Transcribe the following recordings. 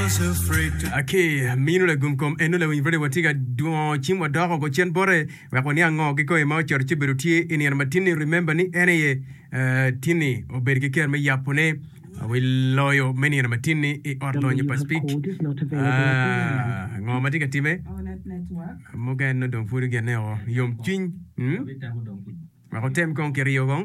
Ki minu lagum kom eno lawiny rwode watye ka dwongo cim wadoko go cen bote wek waniang ngo kikoi ma ocoto ci bedo tye i nino ma tinni remember ni en aye tinni obedo ki kero me yapo ne wi loyo me nino ma tinni i ot lonyo pa speak ngo ma tye ka time muken no dong pwod gene o yom cwiny wek otem kong kiriyo kong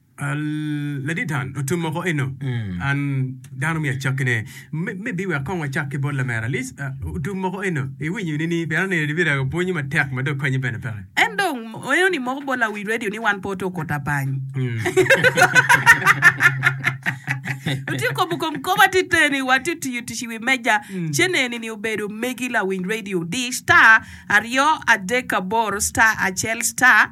Ladit Dan, otum moko eno, an dano omio acakki ne. Me, me bi wek kong wacak ki bot lamera Alice, ah, otum moko eno, iwinyo ni ni, pien aneno ni bira pwonyi matek ma dong konyi bene peke. En dong oeno ni moko bot la wi radio ni wan pe oto koti abany. Otye kobo kom kop atite ni watye tiyo tic i wi meja. Cene ni ni obedo megi lawiny radio di star aryo adek aboro star acel star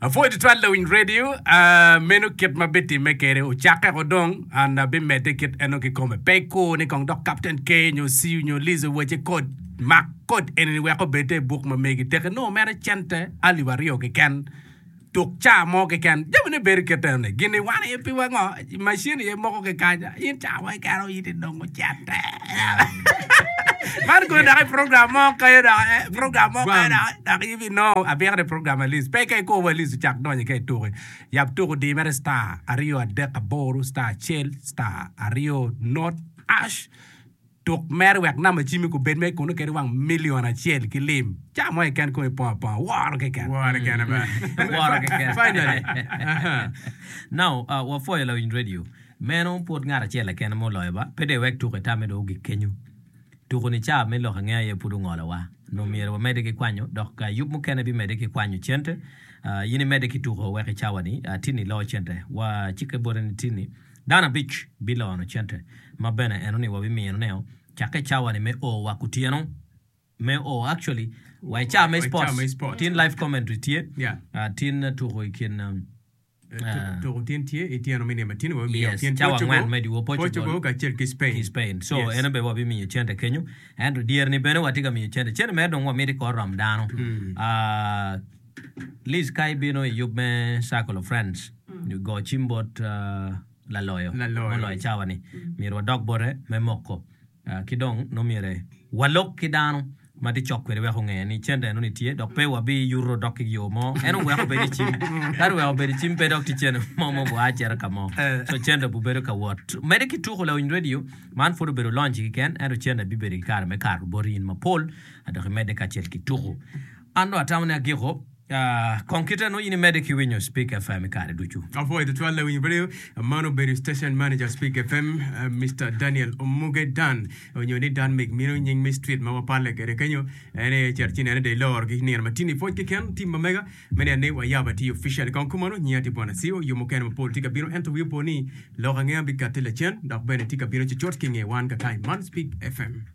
Apwoyo tutwal lawiny radio meno kit ma bitimme kede ucakke ko dong and bimedde kit eno kikome pe ikur ni kong dok captain K nyo Siu nyo Liz owace kod mak kod enini wek obedde i buk ma megi teke nongo mere cente alip aryo keken tuk ca mo keken jamine bedo kit enoni gini wan aye piwa ngo I macin aye moko kikanya. In ca wai kara in idongo cente. Man kodi dok i program mo kayo dok eh, program mo kayo dok eh, dok in inongo abika ni program alis. Pe ka ikobo alis ocak donyo ka ituki. Yap tuku di mere star aryo adek aboro star acel star aryo not ash. Tuk mere wek nam acimmi kubed ma ikuno kede wang milion acel ki lim. Ca mo keken kong ipongo aponga. Woro keken. Woro keken ba. Woro keken. Finally. Now, wapwoyo lawiny radio. Meno pud ngat acel keken ma oloyo ba. Pe dong iwek tuko itamme dong ogik kenyo. Tuko ni ca me lok angeya aye pud ongolo wa. Nongo myero wamede ki kwanyo dok yub mukene bimede ki kwanyo cente. In imede ki tuko wek icawa ni Tini loo cente. Wa cikke bote ni Tini. Dano abic biloyono cente, ma bene eno ni wabimino ne o cakke cawa ni me o wa kutyeno me o actually wa i cawa me sports tin live commentary tye tin tuko i kin tuko tin tye i tyeno me nima tino wa bimiyo yes, kin cawa ngwen me diwo Portugal kacel ki Spain ki Spain so yes. eno be wa bimiyo cente kenyo ento dyeri ni bene wa tye ka miyo cente cente mere dong wa miti kor rom dano mm. uh, Liz ka ibino i yub me Circle of Friends nyo go cim bot laloyo ma oloyo cawa ni, myero wadok bote me moko. Ki dong nongo myere walok ki dano ma tye cok kwede wek onge ni cente enoni tye dok pe wabiyuto dok ki yo mo. Ento wek obed i cim, ka dong wek obed i cim pe dok tye cente mo ma ogua cito ka mo, so cente obibedo ka wot. Mede ki tuko lawiny redio, man pud obedo lonci kiken ento cente bibedo ki kare me kato boti in mapol dok imedde kacel ki tuko. An dong atamo ni agiko. Kong kite nongo in imedde ki winyo Spik FM i kare ducu. Apuo i tutwal lawiny radio. Man obedo station manager Spik FM, Mister Daniel Omuge Dan, onyo ni Dan Mig mino nying me street ma wapalle kede kenyo. En aye cito ci nene day loro gi nino matin i pwoc kiken team ma mega me neno ni wayabo atir officially. Kong kumano nyinga tye Bwana Sio, yo mukene mapol tye ka bino ento wi opo ni lok ange an bikati lacen dok bene tye ka bino cucut ki nge wan kakayi man Spik FM.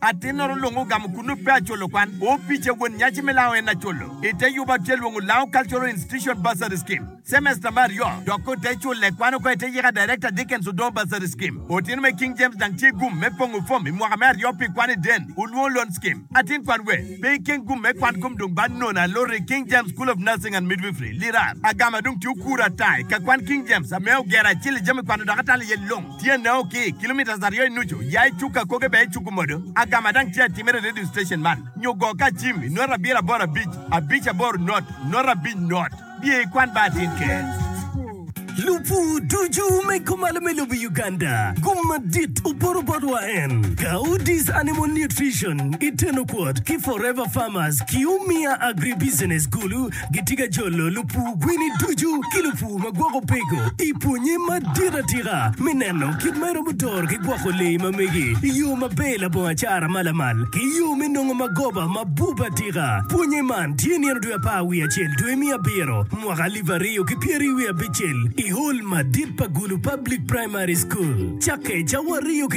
Atinnoro lung ogamo kunnu pe acolo kwan. Opice won nyaci me lango en acolo. I te yuba atye lwongo lango Cultural Institution Bursary Scheme. Semester me aryo dok ote cule kwan oko ite yika Director Dickens Odoo Bursary Scheme. Otino me King James dang tye gum me pongo fom i mwaka me aryo pi kwan i den olwongo Loan Scheme. Atin kwan we pe ikeng gum me kwan kom dong bad nono aloro i King James School of Nursing and Midwifery, Lirar. Agama dong tye okura ata i ka kwan King James ame ogero acil i jami kwano dok atalo iye lung. Tyene o ki kilometres aryo i nucu, ya i cuk akoge bene icuku modo agama dang tye atimere i radio station man nyo go ka cim i nota abiro aboro abic abic aboro not not abic not biye i kwan bar tin ker. Lupu ducu me kumalo me lobo Uganda gum madit oporo bot wa en Gaudis Animal Nutrition i Tenokwot ki Forever Farmers ki Umia Agribusiness Gulu Gitye ka jolo lupur kwini ducu ki lupur ma gwoko peko i pwonnye madit atika me neno kit ma iromo doro ki gwoko lee ma megi i yo maber labongo acara ma lamal ki yo me nongo magoba ma bup atika. Pwonnye man tye nino dwe apar wiye acel dwe me abiro mwaka alip aryo ki pyeraryo wiye abicel i Hall madit pa Gulu Public Primary School cakke cawa aryo ki